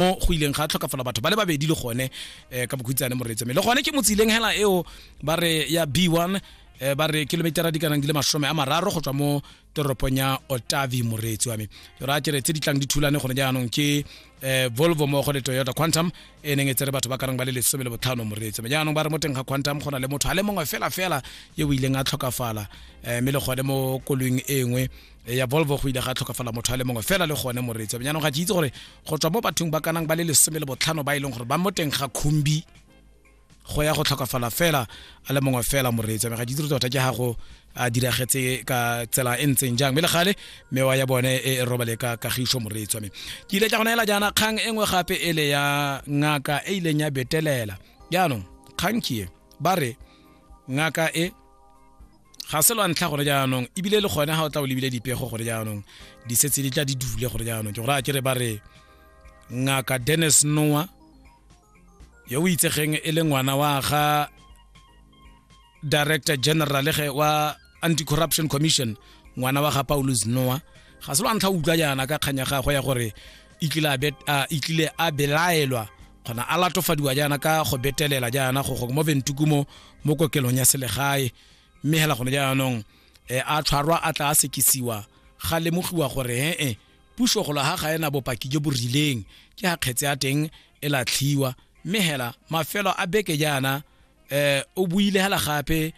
o go ileng ga tlhokafala batho ba le babedi le gone eh, ka bokhutshane moreetso mme le gone ke motsileng hela eo ba re ya b1 eh, ba re kilometera di kanang di le masome a mararo go tswa mo toropong ya otavi moreetsi wa me ke ra kere tse di tlang di thulane gone jaanong ke eh, volvo mmogo le toyota quantum e neng e tsere batho ba karang ba le lesome le botlhano moreetsi me jaanong ba re mo teng ga quantum go na le motho a le mongwe fela fela yo o ileng a tlhokafala eh, mme le gone mo koloing e nngwe e ya volvo go ile ga tlhokafala motho a le mongwe fela le gone moreetsi jaanong ga ke itse gore go tswa mo bathong ba kanang ba le lesome le botlhano ba e leng gore ba mo teng ga khumbi go ya go tlhokafala fela a le mongwe fela moreetsi ga ke itse tota ke ga go a diragetse ka tsela e ntseng jang mme le gale mewa ya bone e robale ka kagiso moreetsi me ke ile ka go naela jaana kgang e nngwe gape e le ya ngaka e ileng ya betelela jaanong kgang ke e ba re ngaka e ga se lwa ntlha gore jaanong ebile le gone ga o tla o lebile dipego gore jaanong di setse di tla di dule gore jaanong ke gore a kere ba re ngaka dennis noa yo o itsegeng e le ngwana wa ga director general ge wa anti-corruption commission ngwana wa ga paulus noa ga se lwa ntlha o utlwa jaana ka kganya gagwe ya gore itlile a belaelwa kgona a latofadiwa jaana ka go betelela jaana go go mo ventukumo mo kokelong ya selegae mme hela gone jaanong eh, a tshwarwa a tla a sekisiwa ga lemogiwa gore he-e puso golo ga ga ena bopaki jo bo rileng ke ga kgetse ya teng e latlhiwa mme hela mafelo a beke jaana eh o buile hala gape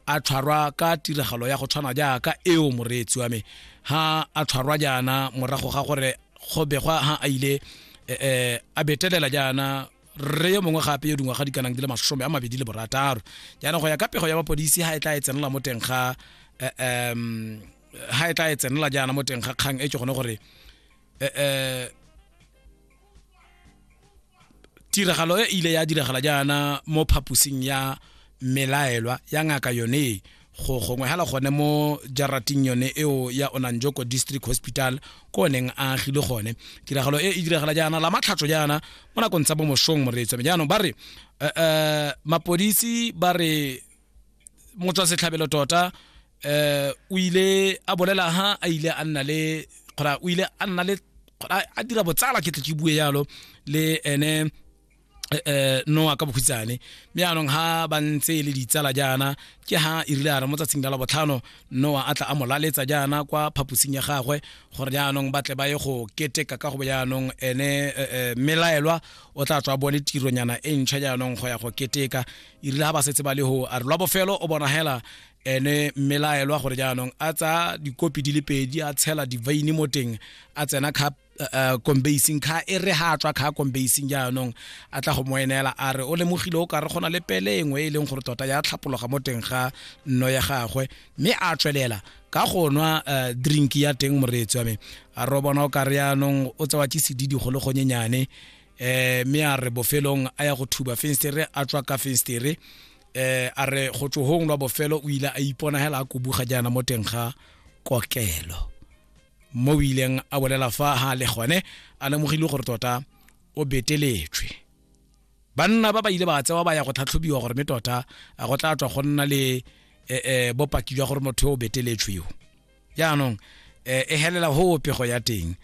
a tshwarwa ka tiragalo ya go tshwana jaaka eo moreetsi wa me ha a tshwarwa jaana morago ga gore go begwa ha a ile eh, eh a betelela jaana re yo mongwe gape yo dingwaga di kanang di le masome a mabedi le borataro jaana go ya ka pego ya mapodisi ha e tla e tsenela mo teng ga eh, em, ha e tla e tsenela jaana mo teng ga kgang e ke gone gore eh, eh, tiragalo e ile ya diragala jaana mo phaposing ya melaelwa ya ngaka yone go gongwe hela gone mo jarating yone eo ya onanjoko district hospital ko neng a agile gone tiragalo e e diragala jaana la matlhatso jaana mo nakong tsa bomosong moreetsome jaanong ba re um mapodisi ba re motswa setlhabelo tota eh o ile a bolela ha a ile a nna le kgora o ile a nna le a dira botsala ke tle ke bue yalo le ene eh, eh noa ka bokhutshane mme anong ha ba ntse e le ditsala jaana ke ha e rile a re mo tsatsing la labotlhano noa a tla a mo laletsa jaana kwa phaposing ya gagwe gore jaanong ba tle ba ye go keteka ka go jaanong ene eh, eh, melaelwa o tla tswa bone tironyana e ntšha jaanong go ya go keteka e rile ga ba setse ba le go a re lwa bofelo o bonagela ene mmelaelwa gore jaanong a tsaya dikopi di le pedi a tshela divaini mo teng a tsena kha eh, eh, kombasing kha e re ga tswa kha kombasing jaanong a tla go mo enela a re o lemogile o ka re gona le pele e nngwe e leng gore tota ya tlhapologa mo teng ga nno ya gagwe mme a tswelela ka go nwa eh, drink ya teng moreetsi wa me a re o bona o ka re jaanong o tsewa ke sedidi go le gonyenyane eh me a re bofelong a ya go thuba fenstere a tswa ka fenstere eh a re go tsohong lwa bofelo o ile a ipona hela a kubuga jana mo teng ga kokelo mo o ileng a bolela fa ha le gone a lemogile gore tota o beteletswe banna ba ba ile ba tsewa ba ya go tlhatlhobiwa gore me tota a go tla tswa go nna le eh, eh, bopaki jwa gore motho o beteletswe yo jaanong eh, e helela ho pego ya teng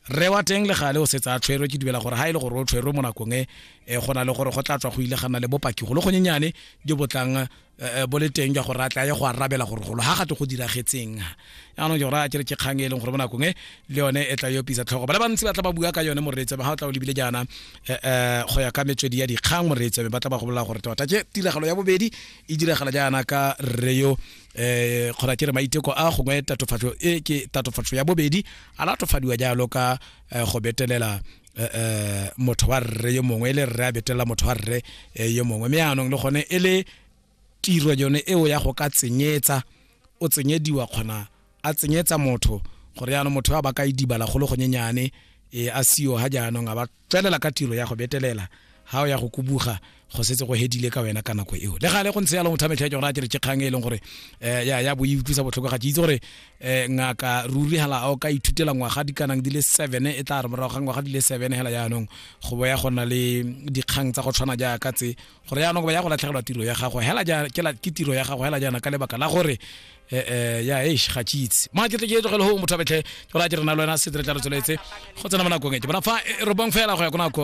re wa teng le gale o setse a tshwerwe ke dumela gore ha e le gore o tshwerwe mo nakong e eh, go na le gore go tla tswa go ile ga nna le bopaki golo gonyenyane jo bo tlang eh, eh, bo le teng jwa gore a tla ye go arabela gore golo ga gate go diragetseng jaanong ke gore a kere ke kgang e leng gore mo nakong e le yone e tla yo pisa tlhogo ba le bantsi ba tla ba bua ka yone moreetsa ba ga o tla o lebile jaana eh, eh, go ya ka metswedi ya dikgang moreetsa ba tla ba go bolela gore tota ke tiragalo ya bobedi e diragala jaana ka radio eh kgona ke re maiteko a gongwe tatofatso e ke tatofatso ya bobedi a latofadiwa jalo ka eh, go betelela eh, eh, motho wa rre yo mongwe e le rre a betelela motho wa rre eh, yo mongwe mme anong le gone e le tiro yone eo ya go ka tsenyetsa o tsenyediwa kgona a tsenyetsa motho gore yaanong motho yo a ba ka idibala golo gonyenyane e a sio ga jaanong a ba Tswelela ka tiro ya go betelela ga o ya go kubuga go setse go hedile ka wena ka nako eo le gale go ntse ya longwe thametlha ke gore a kere ke kgang e leng gore um ya ya bo e utlwisa botlhoko ga ke itse gore um ngaka ruri hala a o ka ithutela ngwaga di kanang di le seven e tla re morago ga ngwaga di le seven hela jaanong go bo ya go na le dikgang tsa go tshwana jaaka tse gore jaanong ba ya go latlhegelwa tiro ya gago hela ke tiro ya gago hela jaana ka lebaka la gore eh, eh, ya eish ga ke itse ma ke tle ke e tlogele go motho a betlhe ke ra ke rena le wena se re tla re tsweletse go tsena mo nakong e ke bona fa eh, re bong fela go ya ko nakong